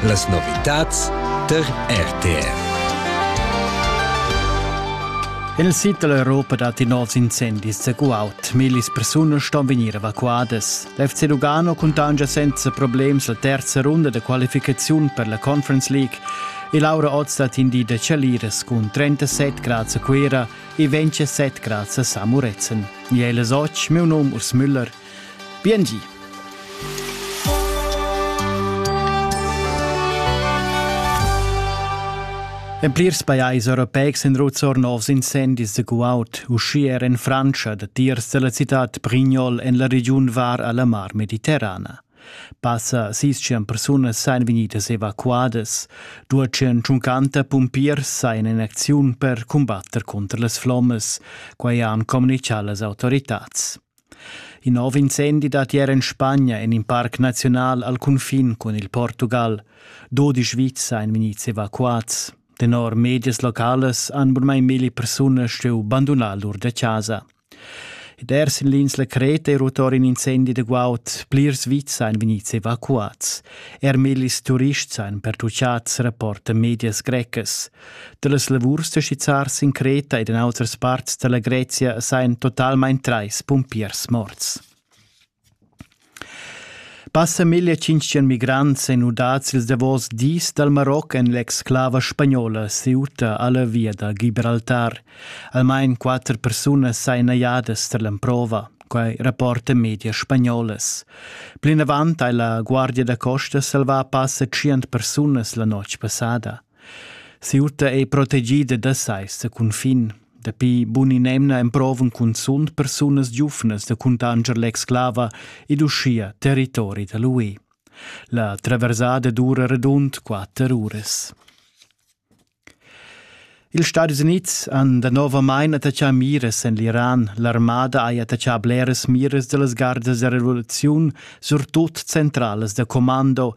Las novitads tar RTV. Il sit dell'Europa dat in oz incendis a Guaut. Millis persone ston venire evacuadas. L'FC Lugano contangia senza problems la terza runda de qualificazione per la Conference League e Laura Oz dat in di de Chaliras cun 37 grads a Cuera e 27 grads a Samuretzen. Miele Soc, meu nom Urs Müller – Biengi. En plirs pajais europeics en Ruzzor novs incendis de guaud, uschia er en Frantscha, datiers della cittad Brignol en la regiun var alla Mar Mediterrana. Passa sis-chan persunas seien vegnidas evacuadas, duechan tschuncanta pumpiers seien in acziun per cumbatter conter las flommas, quai han communichà las autoritads. In nov incendi dat ier en Spagna en in parc naziunal al cunfin cun il Portugal. Dodi Sviza ein vegnids evacuads. Tenor medias locales han burmai mili persunas stuiu bandunar lur da casa. Ed er sin l'ins la Creta è rutor in incendi de guaud. Plirs vits ein vegnids evacuats. Er millis turists ein pertucciats, rapporta medias grecas. Dallas lavurs da skizzar sin Creta ed en autras parts dalla Grezia sajan totalmein trais pumpiers morts. Passa 1500 migrants ein udads ils davos dis dal Maroc en l'exclava spagnola Ceuta alla via da Gibraltar. Almain quatter persunas sain najadas tar l'emprova quai rapporta media spagnolas. Plinavant hai la Guardia da costa salvà passa tschient persunas la notg passada. Si'urta ei protegida da seis da cunfin. Dapi bun in'emna emprovan cunzunt persunas giuvnas da cuntanscher l'exclava ed uschia territori da l'UE. La traversada dura radund quatter uras. Ils Stadis Unids han danovamain attachà miras en l'Iran. L'armada ha attachà bleras miras da las gardas da revoluziun, surtut centralas da commando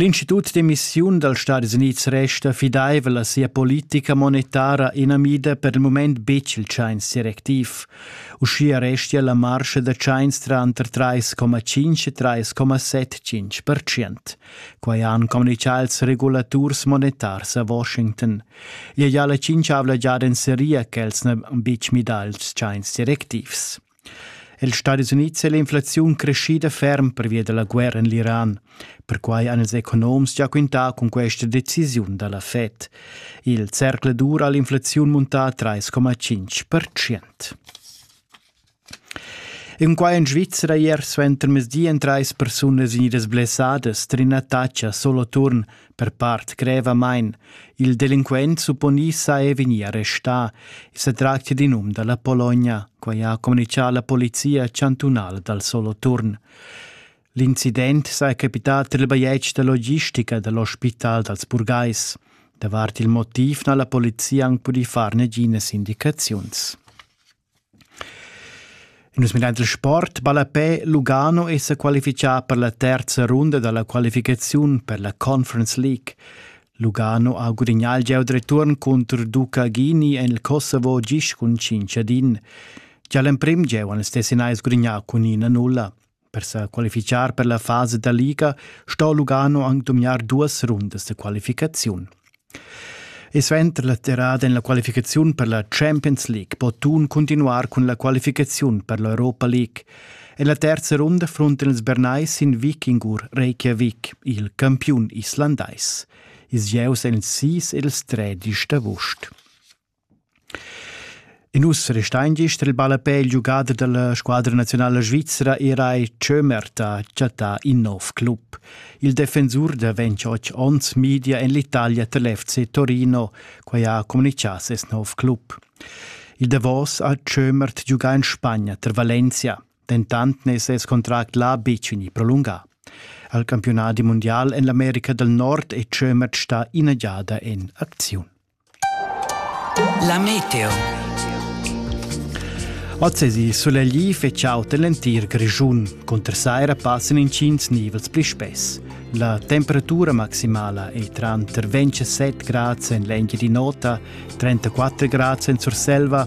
L'institut d'emissiun dals Stadis Unids resta fidaivel a sia politica monetara inamida per il mument betg il tschains directiv. Uschia restia la marscha da tschains tranter 3,5 e 3,75 percent. Quai han communitgà ils regulaturs monetars a Washington. Ia ja la tschintschavla giada en seria ch'els n'han betg midà ils tschains directivs. Els Stadis Unids è l'inflaziun creschida ferm pervia da la guerra en l'Iran. Perquai han ils economs gia quintà cun questa decisiun da la Fed. Il zercl dura l'inflaziun muntà 3,5%. In qua en Svizzera ier suenter mesdi en trais persunas vegnidas blessadas trin Tacha Soloturn Per part grevamain, il delinquent supponi sa e vegnì arrestà. I sa tractia d'in um da la Pologna, quai ha communitgà la polizia chantunala dal Soloturn. L'incident sa è capità tar il bajetg da logistica da l'ospital dals burgais. Davart il motiv n'ha la polizia anc pudì far naginas indicaziuns. In nus minar dil sport ballapè Lugano è sa qualifichà per la terza runda dalla qualificaziun per la Conference League. Lugano ha gudignà il gieu return contro Duca Ghini en il Kosovo gis cun 5 din. Già l'emprim gieu han il Tessinais gudignà cun 1-0. Per sa qualifichar per la fasa da liga sto Lugano anc dumgnar duas rundas da qualificaziun. E suenter la terrada en la qualificaziun per la Champions League po Thun continuar cun la qualificaziun per l'Europa League. En la terza runda fronten ils Bernais in vikingur Reykjavik, il campiun islandais. Ils gieus èn ils sis ed ils tredisch d'avust. In uss restain gist il ballapè il giugader da la squadra naziunala svizra era ei Tschömert ha chattà in nov club. Il defensur da 28 onns media en l'Italia tar l'FC Torino, quai ha communitgà ses nov club. Il davos ha Tschömert giugà in Spagna tar Valencia, dentant n'è ses contract là betg vegnì prolungà. Al campiunadi mundial en l'America dal Nord è Tschömert stà ina giada en acziun. La meteo. Ozzesi sulegli fetschauta l'entir Grischun. Cunter saira passan intgins nivels pli spess. La temperatura maximala è tranter 27 grads en l'Engiadin'Ota, 34 grads en Surselva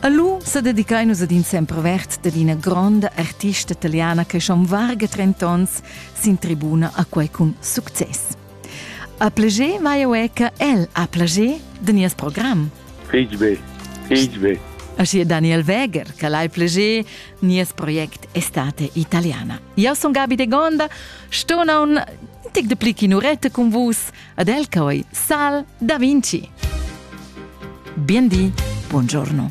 A lu sa dedicain nus ad in sempervert dad ina gronda artista italiana che schon varga trent'onns sin tribuna a quei cun success. A plager vai eu che el ha plager de nies program. Fetg be, fetg be. Aschi Daniel Weger, che l'hai plager, nies project Estate Italiana. Io son Gabi de Gonda, sto non tic de plic in urette con vus, Ad el coi sal da Vinci. Biendi, buongiorno.